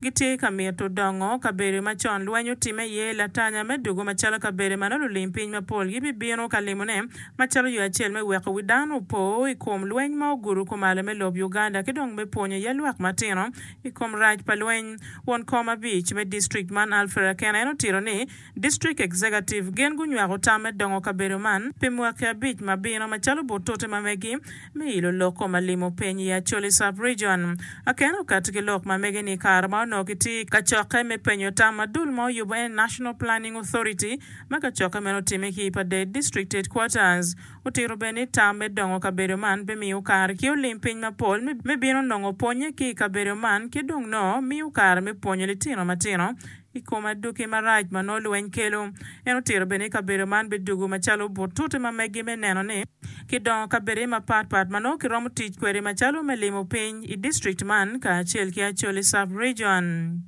Gitye ka mito dongo kabedo ma con lweny otimme iye. Latanya me dugo macalo kabedo meno lulim piny mapol gibibino ka limone macalo yo acel me weko wi dano opo i kom lweny ma ogudo kumalo me lob Uganda ki dong me pwonyo iye lwak matino i kom rac pa lweny. Won kom abic me district man Alfred Akena en otito ni, District Executive gin gunywako tam me dongo kabedo man pi mwaki abic ma bino macalo butute ma megi me ilo lok ko ma limo piny i Acholi Sub Region. Akene okati ki lok ma megi ni kare ma onongo kitye i kacokke me penyo tam ma dul ma oyubo en National Planning Authority ma kacokke meno otime ki i Paded District Headquarters otito bene ni tam me dongo kabedo man be miyo kare ki olim piny mapol me bino nongo pwonye ki i kabedo man ki dong noo miyo kare me pwonyo litino matino I kom aduki marac ma nongo lweny kelo, en otito bene ni kabedo man bidugo macalo butute ma megi me neno ni kidongo kabedone mapat pat ma nongo kiromo tic kwede macalo me limo piny i district man kacel ki Acholi Sub Region.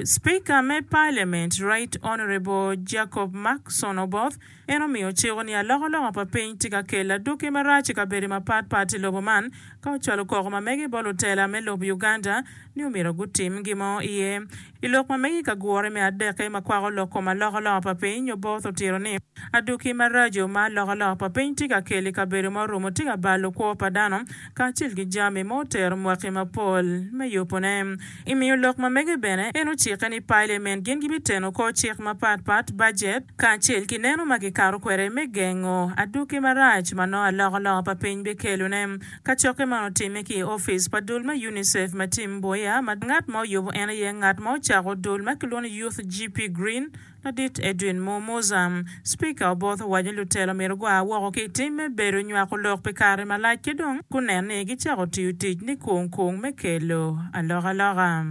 Speaker me Parliament Right Honourable Jacob Markson Oboth, En omiyo ociko ni alokaloka pa piny tye ka kelo adwoki marac i kabedo mapat pat i lobo man ka ocwalo koko ma mege bot lutela me lob Uganda ni omyero gutim gin mo iye. I lok ma mege i kagure me adekke ma kwako lok kom alokaloka pa piny, Oboth otito ni, Adwoki maraco ma alokaloka pa piny tye ka kelo i kabedo ma orumo tye ka balo kwo pa dano kacel ki jami ma otero mwaki mapol me yubone. I miyo lok ma mege bene, en ocikke ni Pailemen gin gibiteno kor cik mapat pat, bajet, kacel ki neno ma kikato kwede me gengo adwogi marac ma nongo alokaloka pa piny bikelone. Kacokke man otimme ki i opic pa dul me UNICEF ma Tim Mboya ma ngat ma oyubo en aye ngat ma ocako dul ma kilwongo ni Youth GP Green, Ladit Edwin Mo Muza, Cipika Oboth owaco ni lutelo myero gua woko ki i tim me bedo nywako lok pi kare malac ki dong gunen ni gicako tiyo tic nikung kung me kelo alokaloka.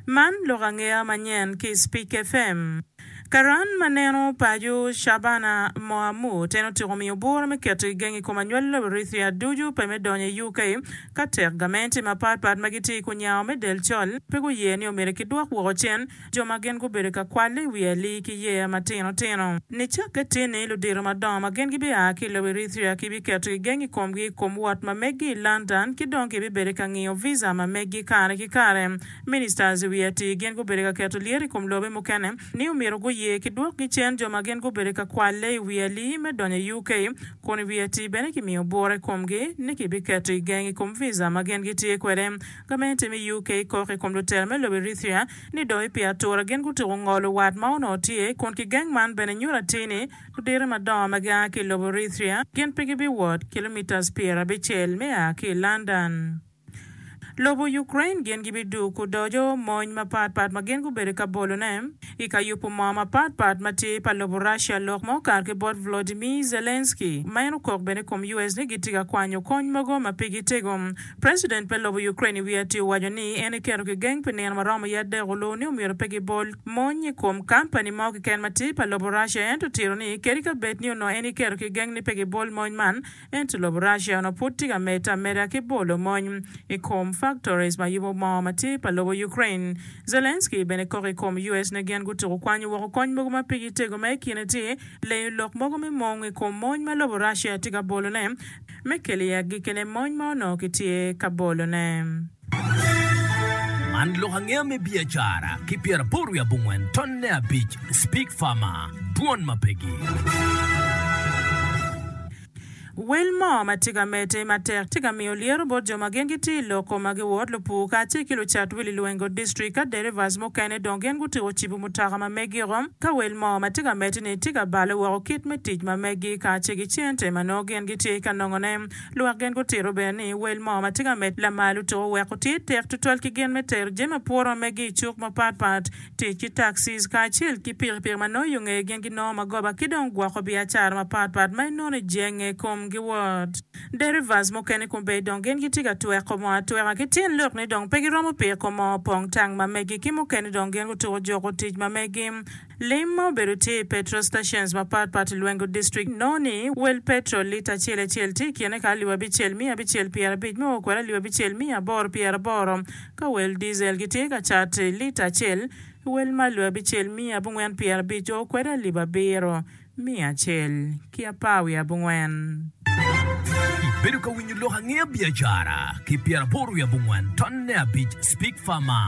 Man lok angeya manyen ki i Cipika FM. Karan ma neno paco Shabana Mohamud, en otyeko miyo bwura me keto i geng i kom anywalo Eritrea ducu pe me donyo i UK ka tek gamente mapatpat ma gitye i kunyawa me del col pe guye ni omyero kidwok woko cen jo ma gin gubedo ka kwalo i wi alii ki yeya matino tino. Nicakke tini, ludito madongo ma gin gibia ki i lobo Eritrea kibiketo gigeng i komgi i kom wot ma meggi i London ki dong kibibedo ka ngiyo visa ma meggi kare ki kare. Ministers i wi atii gin gubedo ka keto lyeto i kom lobe mukene ni omyero guye ki dwok gicen jo ma gin gubedo ka kwalle i wi alii me donyo i UK, kun i wi atii bene kimiyo bwura i komgi ni kibiketo gigeng i kom visa ma gin gitye kwede. Gamente me UK kok i kom lutela me lobo Eritrea ni doyo pi atura gin gutuko ngolo wat ma onongo tye kun ki geng man bene nyuto atir ni ludito madongo ma gia ki i lobo Eritrea gin pe gibiwot kilometres pyera abicel me a ki i London lobo Ukraine gin gibidug ku dojo mony mapat pat ma gin gubedo ka bolone i ka yubu moo mapat pat ma tye pa lobo Russia lok ma okato ki bot Volodymyr Zelensky ma en okok bene i kom US ni gitye ka kwanyo kony mogo ma pigi tego President me lobo Ukraine i wi atir owaco ni en eketo kigeng pi nino maromo ye adek oluwu ni omyero pe gibol mony i kom kampani mo kiken ma tye pa lobo Russia ento otiro ni kadi ka bed ni onongo en eketo kigeng ni pe gibol mony man ento lobo Russia onongo pud tye ka medde ameda ki bolo mony i kom factories ma yubo moo ma tye pa lobo Ukraine. Zelenskyy bene kok i kom US ni gin gutuko kwanyo woko kony mogo ma pigi tego ma i kine tye lenyo lok mogo me mung i kom mony ma lobo Russia tye ka bolo ne me kelo i agikine mony ma onongo kitye ka bolone. Man lok angeya me biacara ki pyeraboro wiye abongwen tonne abic Speak Farmer, Dwon ma pe gir. Wel mo ma tye ka medde matek tye ka miyo lyeto bot jo ma gin gitye i loko ma giwot, lupur kacel ki lucat wili lwenge, District ka derivas mukene dong gin gutyeko cibo mutoka ma megiko. Ka wel mo ma tye ka medde-ni tye ka balo woko kit me tic ma meggi kace ki cente ma nongo gin gitye ka nongone, lwak gin gutito bene ni wel mo ma tye ka medde lamalo tuko weko tye tek tutwal ki gin me tero jami ma puro ma meggi i cuk mapat pat, tic ki taxis kacel ki pikipiki ma nongo i ongee gin ginongo magoba ki dong gwoko biacara mapat pat ma inono i jenge kom giwot. Derivas mukene kombeddi dong gin gitye ka tweko moo atweka ki tin lok ni dong pe giromo piko moo pong tang ma megi ki mukene dong gin gutuko juko tic ma megi. Lim ma obedo tye i petrol stations mapat pat i Lwengo District nongo ni wel petrol lita acel acel tye i kine ka alip abicel miya abicel pyera abic me o kwede alip abicel miya aboro pyera aboro ka wel diesel gitye ka cat lita acel wel ma alip abicel miya abongwen pyera abic o kwede alip abiro Miya acel ki apar wiye abongwen. Ibedo ka winyo lok angeya biacara ki pyeraboro wiye abongwen tonne abic Speak Farmer.